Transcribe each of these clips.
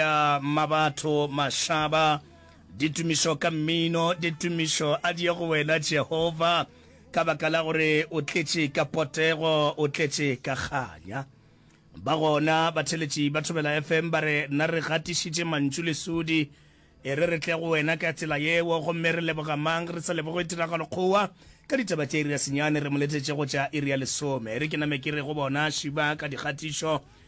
Ya mabatho mašaba, ditumišo ka mmino, ditumišo a di ye go wena Jehova, ka baka la gore o tletše ka potego, o tletše ka kganya. Ba gona batheletši ba Thobela FM ba re, Na re gatišitše mantšu lesudi, e re re tle go wena ka tsela yeo, gomme re leboga mang re sa leboge Tiragalokgowa? Ka ditaba tša iri ya senyane re mo letetše go tša iri ya lesome. E re ke name ke re go bona, Šiba ka dikgatišo.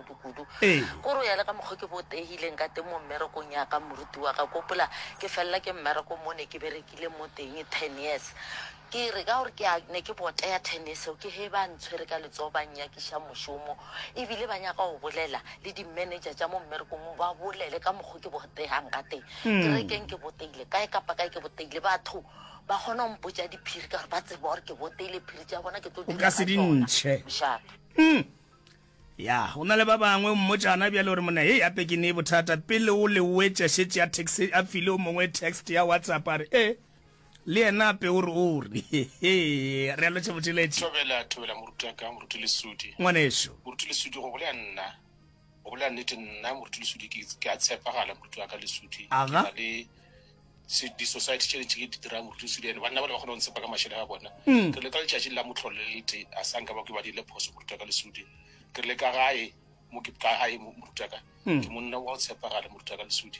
kudu-kudu Ee. ko ro ya le ka mokgwa ke bo tehileng ka teng mo mmerekong ya ka moruti wa ka kopola ke felela ke mmereko mo ne ke berekile mo teng ten years ke re ka gore ke a- ne ke boteya ten years eo ke he ba ntshwere ka letsogo ba nyakiša mošomo ebile ba nyaka go bolela le di-manager tša mo mmerekong o ba bolele ka mokgwa ke boteyang ka teng ke re keng ke boteile kae kapa kae ke boteile batho ba kgona go mpotsa diphiri ka gore ba tseba gore ke boteile phiri tša bona ke tlo o dula ka se ka di tsona. ntšhe Sharp. Mm. Ya, go na le ba bangwe, o mmotša gona bjale, o re, Monna, hei, gape ke nee bothata. Pele o le wetša, šetše a text, a file o mongwe text ya WhatsApp, a re, Ee, le yena gape o re, o re. Hehehe. Re a lwetša botšweletši. Thobela, thobela, moruti wa ka, moruti Lesudi. Ngwanešu. Moruti Lesudi, go bolela nna, go bolela nnete, nna, moruti Lesudi, ke, ke a tshepagala, moruti wa ka Lesudi. Aga. Ke na le. se di society tše tše di dira boruti se diene banna ba le ba kgona go ntsepa ka mašele a bona mm. ke le ka letšatši la motlholo le lete a sa nka ba ke ba dile phoso moruta ka lesudi ke le ka gae mo ke ka gae moruta ka mm. ke monna wa go tshepagale moruta ka lesudi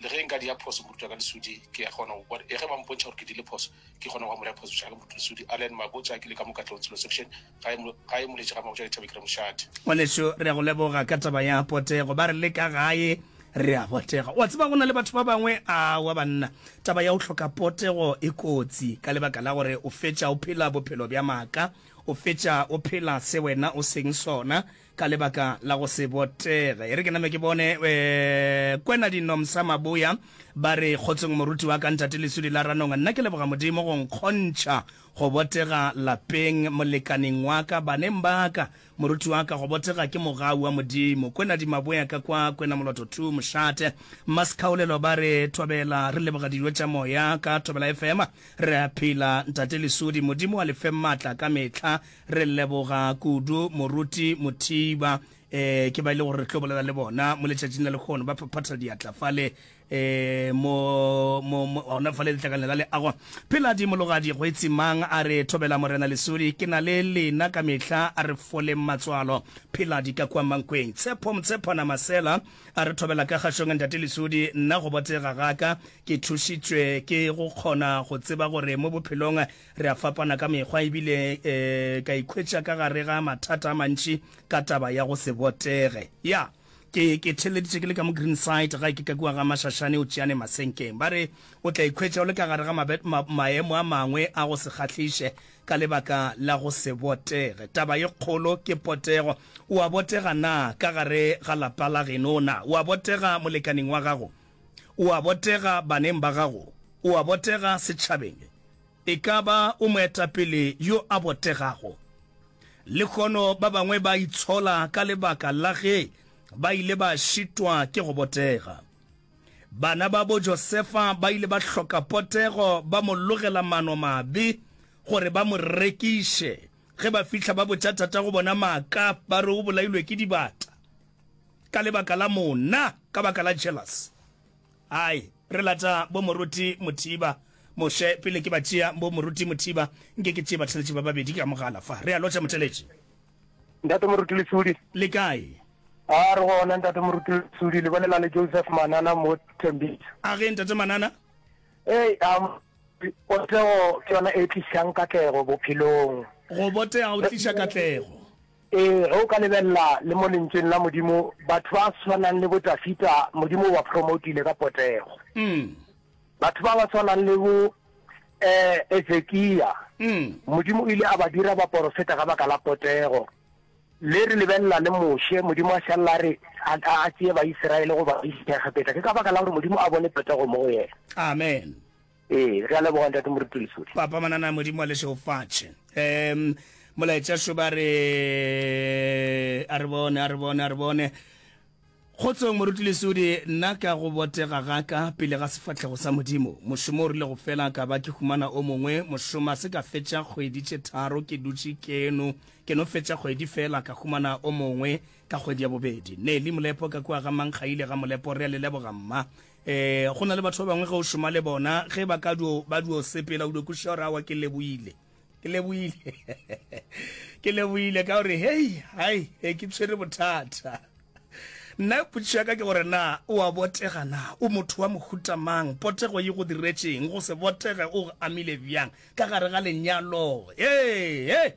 le ge nka di ya phoso moruta ka lesudi ke ya kgona go bona e ge ba mpontšha gore ke dile phoso ke kgona go amola phoso tša ka moruta lesudi allen mabotsa ke le ka mokatlong selo section Gae mo, gae moletše ga Mmabošadi Thabi ke re, Mošadi. Ngwanešu, re a go leboga ka taba ya potego. Ba re le ka gae re a botega. O a tseba, go na le batho ba bangwe, aowa banna, taba ya go hloka potego e kotsi ka lebaka la gore o fetša o phela bophelo bja maaka, o fetša o phela se wena o seng sona, ka lebaka la go se botege e re ke name ke bone um kwena dinomsa maboya ba re kgotsong moruti wa ka ntate lesudi la ranong nna ke leboga modimo go nkgontšha go botega lapeng molekaneng wa ka baneng ba ka moruti wa ka go botega ke mogau wa modimo kwena dimaboya ka kwa kwena moloto two mošate maskhaolelo ba re thobela re leboga dijo tša moya ka thobela fm re a phela ntate lesudi modimo wa lefe maatla ka metlha Re leboga kudu moruti Mothiba. Eh, ke ba ile gore re tlo bolela le bona mo letšatšing la lekgono ba phaphatha diatla fale eh, mo gona fale letlakane la leago phela di mologadi go etsimang a re thobela morena lesodi ke na le lena ka mehla a re fole matswalo phela di ka kwa mankweng tshepho motshepana masela a re thobela ka gašong ntate lesodi nna go botega gaka ke thušitswe ke go kgona go tseba gore mo bophelong Re a fapana ka mekgwa e bile e ka ikhwetša ka gare ga mathata a mantši ka taba ya go se botege. Ya, ke, ke theeleditše ke le ka mo Greenside gae ke ka kua ga Mašašane o tšeane masenkeng. Ba re o tla ikhwetša o le ka gare ga mabe, ma, maemo a mangwe a go se kgahliše ka lebaka la go se botege. Taba ye kgolo ke potego. O a botega na ka gare ga lapa la geno? Na o a botega molekaning wa gago? O a botega baneng ba gago, o a botega setšhabeng. E ka ba o moetapele yo a botegago. Lehono ba bangwe ba itshola ka lebaka la ge ba ile ba šitwa ke go botega. Bana ba bo Josefa ba ile ba hloka potego ba mo logela mano mabe gore ba mo rekiše. Ge ba fihla ba botša tatago bona maaka ba re o bolailwe ke dibata. ka lebaka la monna ka baka la jealous ai re lata bo moruti mothiba moshe pele ke ba tšea bo moruti mothiba nke ke tšee batheletši ba babedi ka mogala fa re a lotša motheletši ntate moruti lesudi le kae a re gona ntate moruti lesudi le bolela le joseph manana mo thembisa a ge ntate manana ee um, potego ke yona e tlisang katlego bophelong go botega o tlisa katlego Ee, ge o ka lebelela le mo Lentšweng la Modimo, batho ba swanang le bo Dafida Modimo o ba promotile ka potego. Mm. Batho ba ba swanang le bo eh, Ezekia Mm. Modimo o ile a ba dira baporofeta ka baka la potego. Le re lebelela le Moshe, Modimo a šalela a re a, a, a tšee Baisiraele go ba isa Egepeta. Ke ka baka la gore Modimo a bone potego mo go yena. Amen. Ee, re a leboga ntate moruti Lesodi. Papa Manana Modimo wa lešeofatše. Um, molaetša šo ba re a re bone a re bone a re bone kgotsong moruti lesudi nna ka go botega gaka pele ga sefatlhego sa modimo mošomo o rile go fela ka ba ke humana o mongwe mošoma se ka fetša kgwedi tše tharo ke dutše keno ke no fetša kgwedi fela ka humana o mongwe ka kgwedi ya bobedi neli molepo ka kua ga mankgaile ga molepo re a le leboga mma Ee, go na le batho ba bangwe ge o šoma le bona, ge ba ka dio, ba dio sepela, o dio kwešiša gore awa ke leboile. Ke leboile. ke leboile ka gore, hei, hai, he, ke tshwere bothata. Nna potšišo ya ka ke gore na o a botega na? O motho wa mohuta mang? Potego e go diretšeng? Go se botege o go amile bjang ka gare ga lenyalo? Ee, ee.